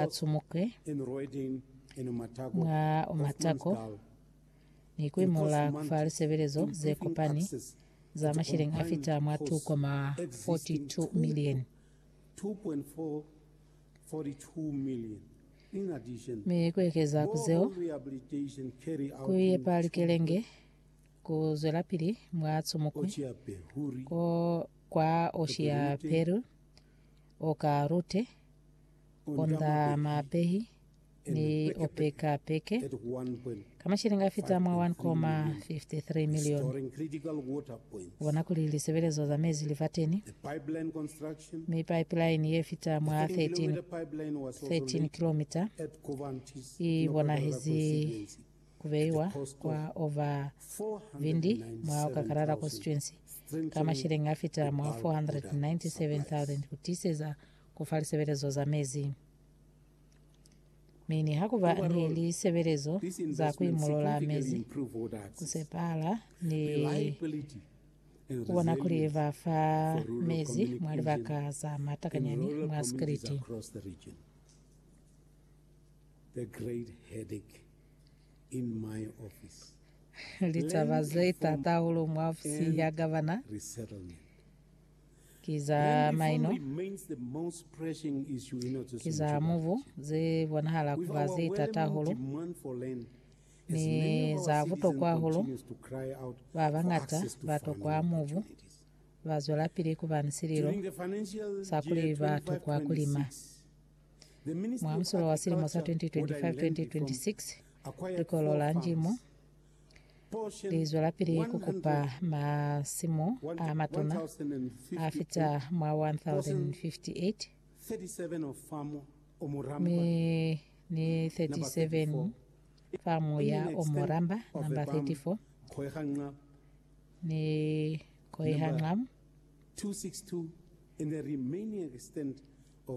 a cumuke mwa matako ni ku imola fa lisebelezo ze kopani za masheleñi a fita mwa 2.42 milioni, mi ku ekeza ku zeo, ku yepa likelenge ku zwelapili mwa cumuko kwa oshi ya Peru, oka lute. Onda mapehi ni opeka peke ka mashilingi a fita mwa 1.53 milioni. Bona kuli lisebelezo za mezi livateni mi pipeline ye fita mwa 13, 13 kilomita i bonahezi kubeiwa kwa ova vindi mwa Okakarara constituency ka mashilingi a fita mwa 497,000 kutiiseza Ku fa lisebelezo za mezi. Mi niha ku ba ni lisebelezo za ku imolola mezi, ku sepala ni ku bona kuli ba fa mezi mwa libaka za matakanyani mwa sikiliti. Litaba ze t'ata hahulu mwa ofisi ya gavana. ki za maino, ki za mubu ze bonahala ku ba ze t'ata hahulu, ni za butokwa hahulu. Ba bañata ba tokwa mubu ba zwelapili ku ba ni sililo sa kuli ba tokwa ku lima. Mwa musulo wa silimo sa 2025-2026, Likolo la Njimo Li zwelapili ku kupa masimu a matuna a fita mwa 1058 mi ni 37 famu ya o mu lamba, namba 34, ni Koihanqam,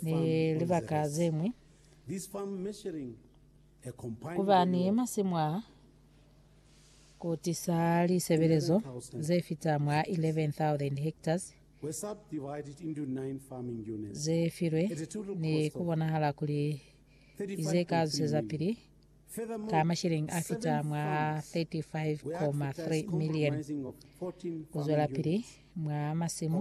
ni libaka ze ñwi. Ku ba ni masimu a ku tisa lisebelezo ze fita mwa 11,000 hektas ze filwe ni ku bonahala kuli ki ze ka zusezapili ka mashilingi a fita mwa 35.3 milioni ku zwelapili mwa masimu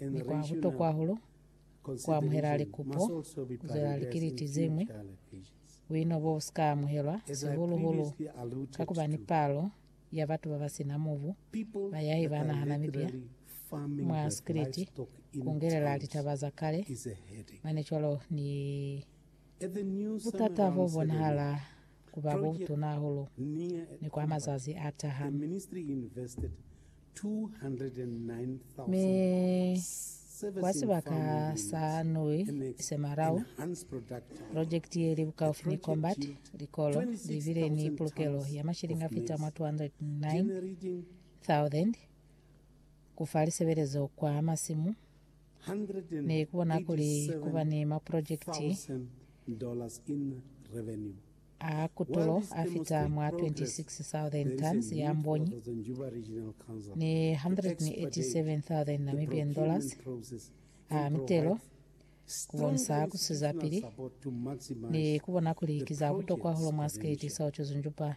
Ni kwa butokwa hahulu kuamuhela likupo kuzwelela likiliti zeñwi. Buino bo busika amuhelwa, sihulu-hulu kakuba ni palo ya batu babasina mubu bayahi ba naha Namibia mwa sikiliti, kungelela litaba za kale, mane cwalo ni butata bobonahala ku ba ku tuna hahulu ni kwa mazazi a taha. Mi kwa sibaka sa Nui se Marau, projekiti ye li bukaufi ni Combat, likolo li bile ni pulukelo ya mashilingi a fita mwa 209,000 ku fa lisebelezo kwa masimu ne ku bona kuli ku ba ni mapulojekiti a kutulo a fita mwa 26,000 tons ya mbonyi ni N187,000 a mitelo ku bonisa ku sizapili ne ku bona kuli ki za butokwa hahulu mwa sikeleti sa Otjiozundjupa.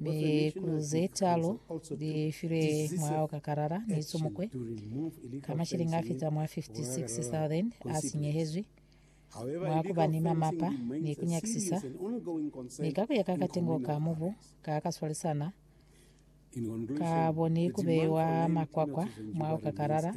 mi ku ze talu li filwe mulaho ka karara ni tsumukwe ka mashilingi a fita mwa 56,000 a sinyehezwi mwa ku ba ni mamapa ni ku nyakisisa ni ka ku ya ka katengo ka mubu ka ka swalisana ka bo ni ku beiwa makwakwa mulaho ka karara